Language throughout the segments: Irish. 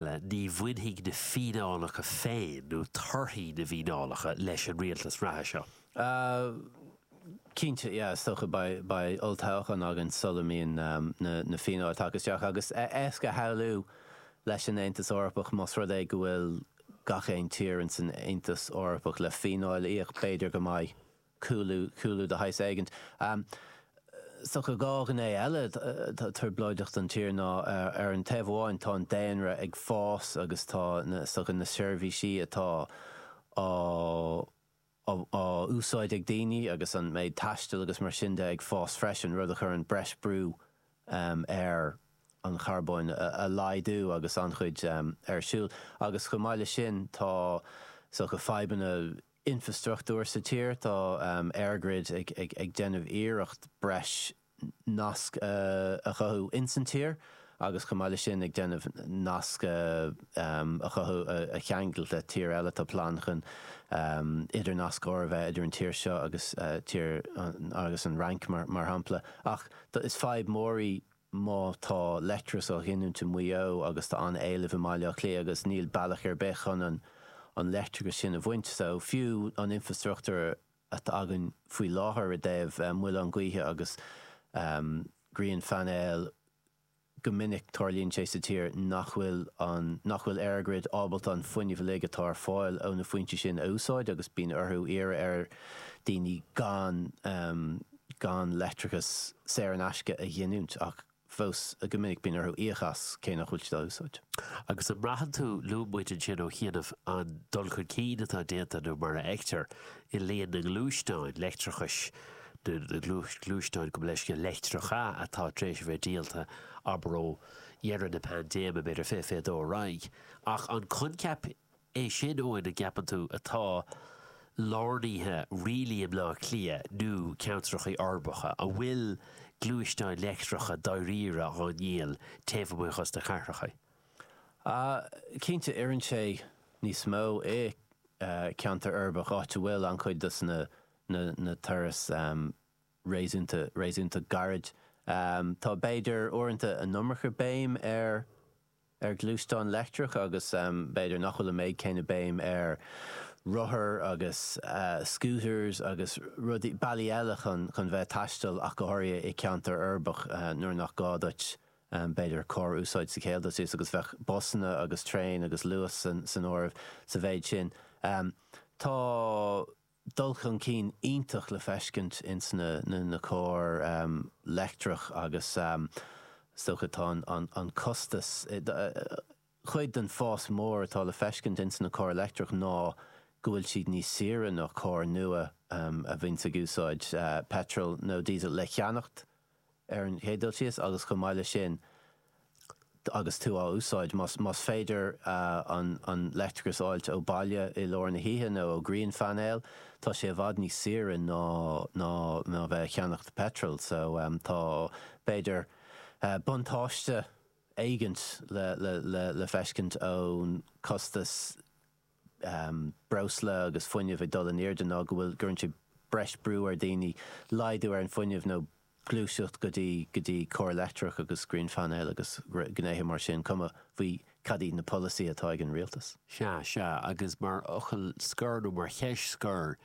Ní bhainfidh na fíneálacha féin, nó torthaí na bhfíneálacha, leis an rialtas reatha seo. Cinnte, yeah, is dócha, beidh olltoghchán againn sula mbíonn na fíneáil tagtha isteach, agus is éasca a shamhlú leis an Aontas Eorpach, más rud é go bhfuil gach aon tír in san Aontas Eorpach le fíneáil a íoc, b'fhéidir go mbeidh. cúlú, cúlú de shaghas éigint. Is dócha dhá ghné eile atá trioblóideach don tír ná, ar an taobh amháin, tá an daonra ag fás agus tá na, is dócha, na seirbhísí atá á, á, á úsáid ag daoine agus an méid taistil agus mar sin de ag fás freisin, rud a chuireann breis brú ar an charbóin a laghdú agus an-chuid ar siúl. Agus chomh maith leis sin tá, is dócha, fadhbanna. infreastruchtúir sa tír, tá EirGrid ag déanamh iarracht breis nasc a chothú insan tír agus chomh maith leis sin ag déanamh nasc a chothú a cheangal le tíortha eile. Tá plean chun idirnascóir a bheith idir an tír seo agus an Fhrainc mar shampla. Ach is fadhb mór í. má tá leictreachas á ghiniúint i Maigh Eo agus tá an t-éileamh i mBaile Átha Cliath agus níl bealach ar bith chun an leictreachas sin a bhaint, so fiú an infreastruchtúr atá againn faoi láthair i dtaobh muileáin gaoithe agus grianphainéil, go minic tarlaíonn sé sa tír nach bhfuil an, nach bhfuil EirGrid ábalta an fuinneamh uilig atá ar fáil ó na foinsí sin a úsáid agus bíonn orthu iarraidh ar dhaoine gan, gan leictreachas saor in aisce a ghiniúint, ach fós go minic bíonn orthu íoc as, cé nach bhfuil siad á úsáid. Agus an mbraitheann tú, luaigh muid ansin ó chianaibh an dul chun cinn atá déanta, nó mar a fheictear, i líon na ngluaisteáin leictreachais, nó na gluaisteáin, gabh mo leithscéal, leictreacha atá tar éis a bheith díolta, abair ó dheireadh na paindéime, b'fhéidir, fiche fiche dó ar aghaidh, ach an coincheap é sin, Eoin, an gceapann tú an bhfuil sé lárnaithe dáiríre i mBleá Cliath nó ceantracha uirbeacha, an bhfuil gluaisteáin leictreacha dáiríre á ndíol taobh amuigh as na cathracha? Cinnte, oireann sé níos mó i gceantar uirbeach, áit a bhfuil an-chuid dos na turais réasúnta, réasúnta gairid. Tá b'fhéidir uaireanta an iomarca béim ar ar ghluaisteáin leictreacha agus b'fhéidir nach bhfuil an méid céanna béim ar rothair agus scooters agus rudaí, bealaí eile chun bheith ag taisteal ach go háirithe i gceantar uirbeach nuair nach gá duit b'fhéidir carr a úsáid sa chéad dul síos agus bheadh busanna agus traein agus Luas san áireamh sa mhéid sin. Tá. dul chun cinn iontach le feiscint ins na cairr leictreach agus is dócha tá an costas, chuid den fás mór atá le feiscint ins na cairr leictreach ná go bhfuil siad níos saoire ná cairr nua a bhíonns ag úsáid peitreal nó diesel le ceannacht. ar an chéad dul síos, agus chomh maith leis sin, agus tú á úsáid, más féidir an leictreachas a fháilt ó bhaile i lár na hoíche nó ó ghrianphainéal, tá sé i bhfad níos saoire ná a bheith ag ceannacht peitril. So, tá, b'fhéidir, buntáiste éigint le feiscint ón costas breosla agus fuinneamh ag dul in airde ná go bhfuil, gcuireann sé breis brú ar daoine laghdú ar an fuinneamh nó gluaiseacht go dtí go dtí cairr leictreach agus grianphainéil agus gnéithe mar sin, cuma faoi cad iad na polasaithe atá ag an rialtas. Sea, sea, agus mar fhocal scoir nó mar cheist scoir,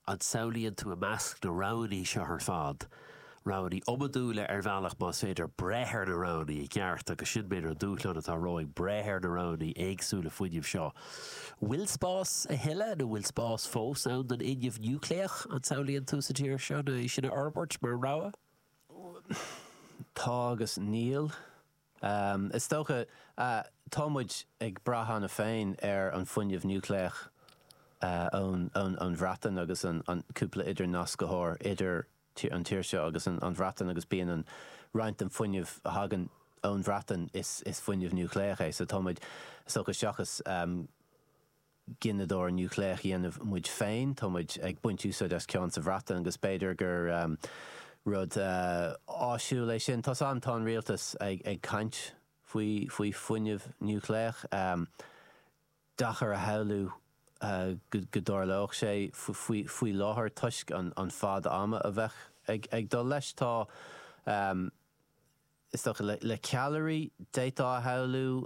An samhlaíonn tú i measc na roghanna seo ar fad roghanna iomadúla ar bhealach más féidir breith ar na roghanna i gceart agus sin b'fhéidir an dúshlán atá romhainn, breith ar na roghanna éagsúla fuinnimh seo. Bhfuil spás a thuilleadh nó bhfuil spás fós ann don fhuinneamh núicléach, an samhlaíonn tú, sa tír seo é sin a fhorbairt mar rogha? Tá agus níl. Is dócha, tá muid ag brath cheana féin ar an bhfuinneamh núicléach ón Bhreatain agus an cúpla idirnascthóir idir an tír seo agus an Bhreatain agus bíonn an roinnt den fuinneamh a thagann ón Bhreatain is fuinneamh núicléach é so tá muid is dócha seachas gineadóir núicléach dhéanamh muid féin. Tá muid ag baint úsáid as ceann sa Bhreatain agus b'fhéidir gur rud áisiúil é sin. Tá an tá an rialtas ag ag caint faoi faoi fuinneamh núicléach. Deacair a shamhlú go go dtarlódh sé faoi faoi láthair toisc an an fad ama a bheadh ag ag dul leis. Tá is dócha le le ceallraí d'fhéadfá a shamhlú.